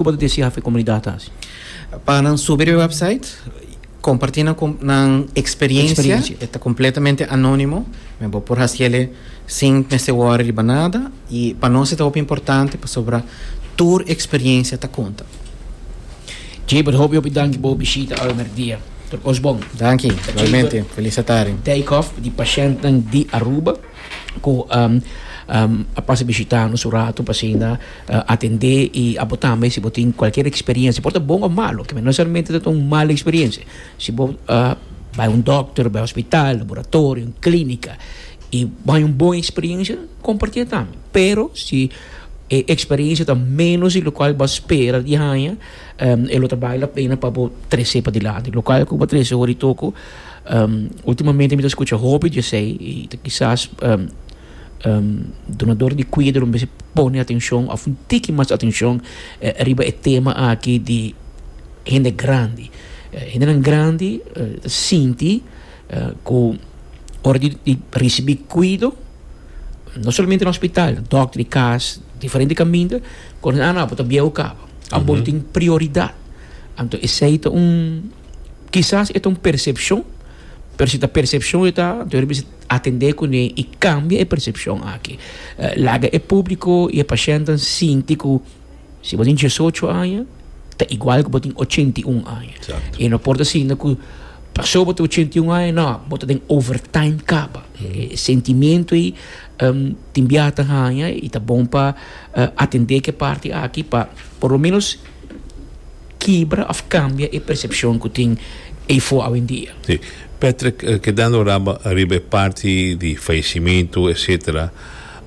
Cu bo ta deci hafe comunidad ta haci? Pa nan subi riba website, comparti nan nan experiencia, e ta completamente anonimo, bo por haci ele sin mester worry riba nada, y pa nos e ta hopi importante pasobra tur experiencia ta conta. Jaybert hopi hopi danki bo bishita awe mercdia. Tur cos bon. Danki, igualmente. Feliz atarde. Dijkhoff di Patiëntnan di Aruba. cu a pasa bishita nos un ratu pa asina atende y a bo tambe si bo tin cualkier experiencia, por ta bon o malo, no necesariamente ta un mal experiencia, si bo bay un dokter, bay hospital, laboratorio, un clinica y bo haña un bon experiencia compartiel tambe, pero si e experiencia ta menos di locual bo a spera di haña e lo ta bay la pena pa bo trece padilante, locual cu bo a trece hoy di toco. Ultimamente mi ta scucha hopi di esey y ta kisas donador di cuidado lo mester pone atencion of un tiki mas atencion riba e tema aki di hende grandi. Hendenan grandi ta sinti cu ora di ricibi cuido no solamente na hospital dòkter di cas diferente caminda cu nan abo ta biahu caba. Abo tin prioridad anto esey ta un. Kisas e ta un persepshon, pero si ta persepshon e ta anto e ta bisa atendé kuné i kambia e persepshon aki. Laga e públiko i e pashèntnan sinti ku si bo tin diesocho aña ta igual ku bo tin ochenta i un aña. E no por ta sinti ku pasó bo ta ochenta i un aña nò bo ta den overtime kaba. E sentimentu ei tin biaha ta haña i ta bon pa atendé ku e parti aki pa por lo menos. Kibra of kambia e persepshon ku tin eifo awendia. Si. Patrick, kedando riba e parti di fayesimentu etsetera,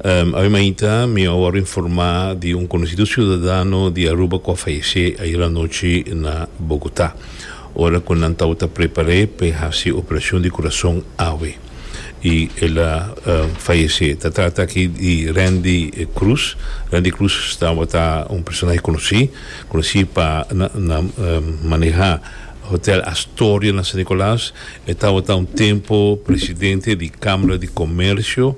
awe mainta mi a wòrdu informá di un konosido siudadano di Aruba ku a fayesé ayer anochi na Bogotá, ora ku nan tabata prepar'é p'e hasi operashon di kurason awe. y el a fayece. Ta trata aki di Randy Cruz. Randy Cruz tabata un personahe conoci, conoci pa na maneha Hotel Astoria na San Nicolas. E tabata un tempo presidente di Camara di Comercio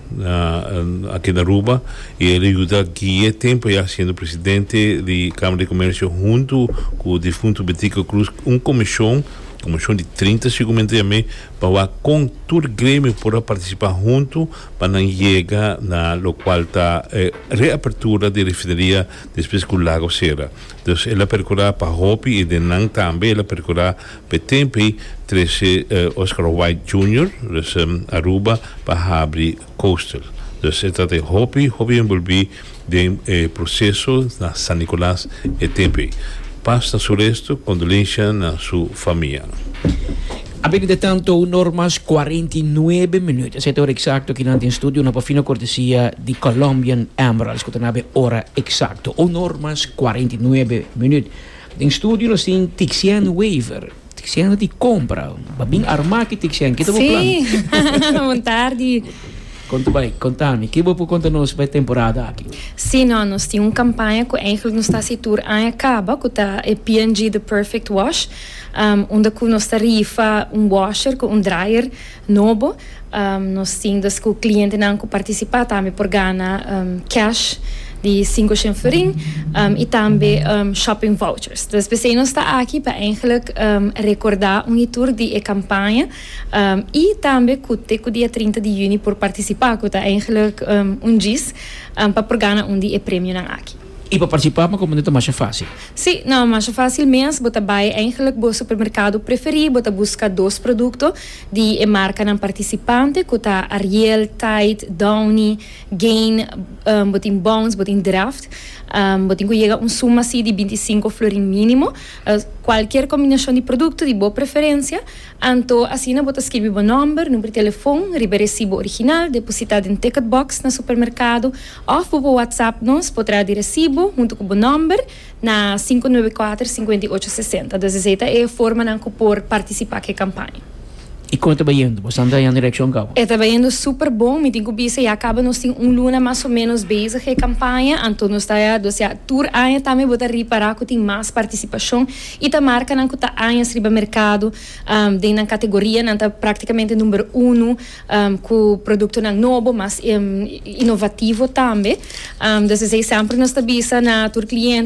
aki na Aruba y el a yuda guie tempo ya siendo presidente di Camara di Comercio hunto cu difunto Betico Cruz un comision. Komishon di trinta sigumentu yam'é pa wak kon tur gremio por a partisipá huntu pa nan yega na lokual ta e reapertura di refineria despues ku Lago sera. Dus el a perkurá pa hopi i den nan tambe el a perkurá pa e tempu trese Oscar White Junior, dus Aruba pa habri Coastal. Dus e trata di hopi hopi enbolbí. Den e proceso na San Nicolas e tempe. Paz na su resto, condolencia na su famia. A bebida tan to un or mas cuarenta i nuebe minuut. Esei ta ora exacto ki nan tin studio na Pofino cortesia di Colombian Emeralds cu ta na be ora exacto. Un or mas cuarenta i nuebe minuut. Den studio nos tin Tixien Wever. Tixen no tin compra. Ba bin arma ki tixen. Kito bo plan? Sí, bon tardi. Con ta bay? Contami, ki bo por conta nos pa e temporada aki? Sí, no. Nos tin un campaña cu eigenlijk nos ta haci tur aña caba, cu ta e P&G The Perfect Wash, unda cu nos ta rifa un washer cu un dryer. Nobo. Nos tin dus ku klientenan ku partisipá tambe por gana cash di sinku shinfering i tambe shopping vouchers. Dus p'esei nos ta aki pa eindelijk rekordá un hitur di e kampaña i tambe ku te ku dia trinta di yüni por partisipá, ku ta eindelijk un djis, pa por gana un di e premionan aki. Y pa participá pa componente ta masha fácil? Sí, nan, masha fácil mes. Bo ta bai eigenlijk bo supermercado preferí, bo ta busca dos producto di e marcanan participante cu ta Ariel, Tide, Downy, Gain, bo tin Bounce, bo tin Draft. Bo tin cu yega un suma si di binti sinku florin minimo. Cualkier combinacion di producto di bo preferencia. Anto asina bo ta skirbi bo nomber, number di telefon riba e recibo original, depositá den ticket box na supermercado. Òf bo por whatsapp nos por traha di resibo huntu ku bo nòmber na sinku nuebe i kuater sinkuenta i ocho sesenta. Dus esei ta e formanan ku por partisipá ku e kampaña. I kon e ta bayendu? Bo Sandra Jan Direkshon Kau? E ta bayendu super bon. Mi tin ku bisa ya kaba nos tin un luna mas o ménos bezig e kampaña. Anto nos ta ya dos ya tur aña tambe bo ta ripará ku tin mas partisipashon i ta markanan ku ta añas riba merkado. Den nan kategorianan ta praktikamente numero unu. ku produktonan nobo mas inovativo tambe desesey sèmper nos ta bisa na tur kliente.